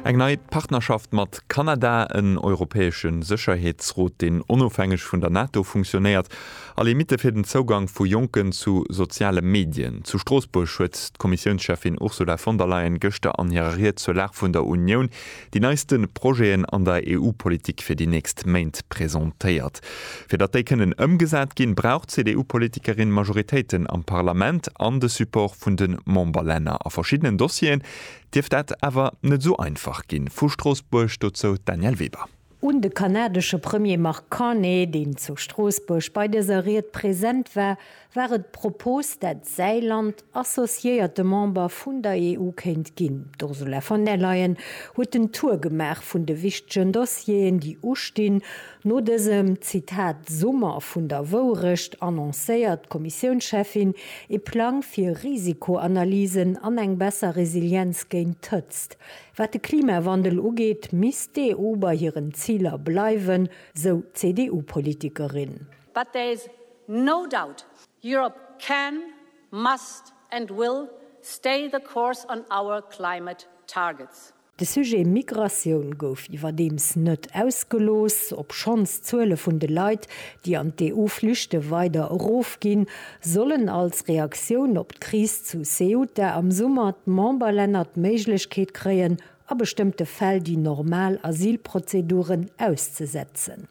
Eng nei Partnerschaft mat Kanada, en europäesche Sécherheetsrot, deen onofhängeg vun der NATO funktionéiert, a Limitte fir den Zougang vu Jonken zu soziale Medien. Zu Stroossbuerg huet d'Kommissiounscheffin Ursula von der Leyen gëschter an hirer Ried zur Lag vun der Unioun Déi neiste Projeten an der EU-Politik fir déi nächst Méint presentéiert. Fir datt déi kënnen ëmgesat ginn, brauch d'CDU-Politikerin Majoritéiten am Parlament an de Support vun de Memberlänner. A verschiddenen Dossieren dierft dat awer net esou einfach ginn. Vu Stroossbuerg dozou d'Danièle Weber. Un de kanadesche Premier Mark Carney, deen zu Stroossbuerg bei dëser Ried present war, war et d'Propos, dat d'Säiland associéierte Member vun der EU kéint ginn. D'Ursula von der Leyen huet den Tour gemaach vun de wichtegen Dossieren, déi ustinn. No dësem, Zitat, Summer vun der Wourecht annoncéiert d'Kommissiounscheffin ee Plang fir Risikoanalysen an eng besser Resilienz géint d'Hëtzt. Wat de Klimawandel ugeet, misst d'EU bei hiren Ziler bleiwen, sou d'CDU-Politikerin. But there is no doubt Europe can, must and will stay the course on our climate targets. De Sujet Migratioun gouf iwwerdeems net ausgelooss. Obschonns d'Zuele vun de Leit, déi an d'EU flüchte weider erofginn, sollen als Reaktioun op d'Kris zu Ceuta am Summer d'Memberlänner d'Méiglechkeet kréien, a bestëmmte Fäll déi normal Asylprozeduren auszesetzen.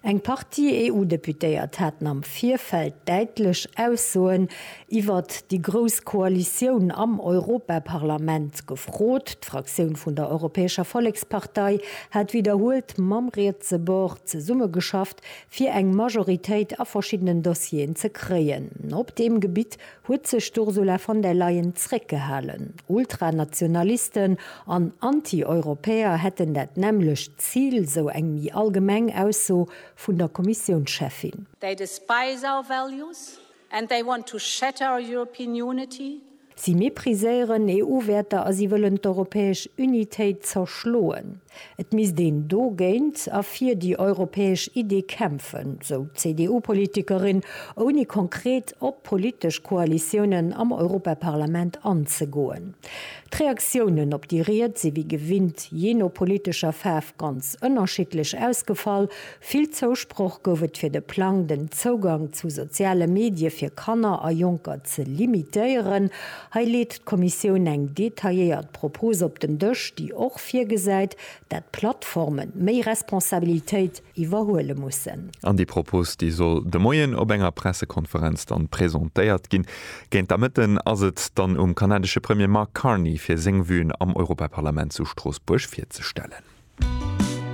Eng Partie EU-Deputéiert haten am Virfeld däitlech Aussoen iwwert déi grouss Koalitioun am Europaparlament gefrot. D'Fraktioun vun der Europäescher Vollekspartei hat widderhuelt mam rietse Bord zesummegeschafft, fir eng Majoritéit a verschiddenen Dossieren ze kréien. Op deem Gebitt huet sech d'Ursula von der Leyen zréckgehalen. Ultranationalisten an Anti-Europäer hätten dat nämmlecht Zil, sou eng méi allgemeng Ausso vun der Kommissiounscheffin. They despise our values and they want to shatter our European unity. Si mepriséieren EU-Wäerter a si wëllen d'europäesch Unitéit zerschloen. Et misst een dogéint a fir déi europäesch Iddi kämpfen, sou d'CDU-Politikerin, ouni konkret op politesch Koalitiounen am Europaparlament anzegoen. D'Reaktiounen op déi Ried si wéi gewinnt jee no politescher Faarf ganz ënnerschiddlech ausgefall, Vill Zousproch gouf et fir de Plang, den Zougang zu soziale Medie fir Kanner a Jonker ze limitéieren. Hei leet d'Kommissioun eng detailléiert Propos op den Dësch, déi och virgesäit, dat d'Plattforme méi Responsabilitéit iwwerhuele mussen. An déi Propos, déi soll de Moien op enger Pressekonferenz dann presentéiert ginn. Géint der Mëtten ass et dann um kanadesche Premier Mark Carney, fir seng Vuen am Europaparlament zu Stroossbuerg virzestellen.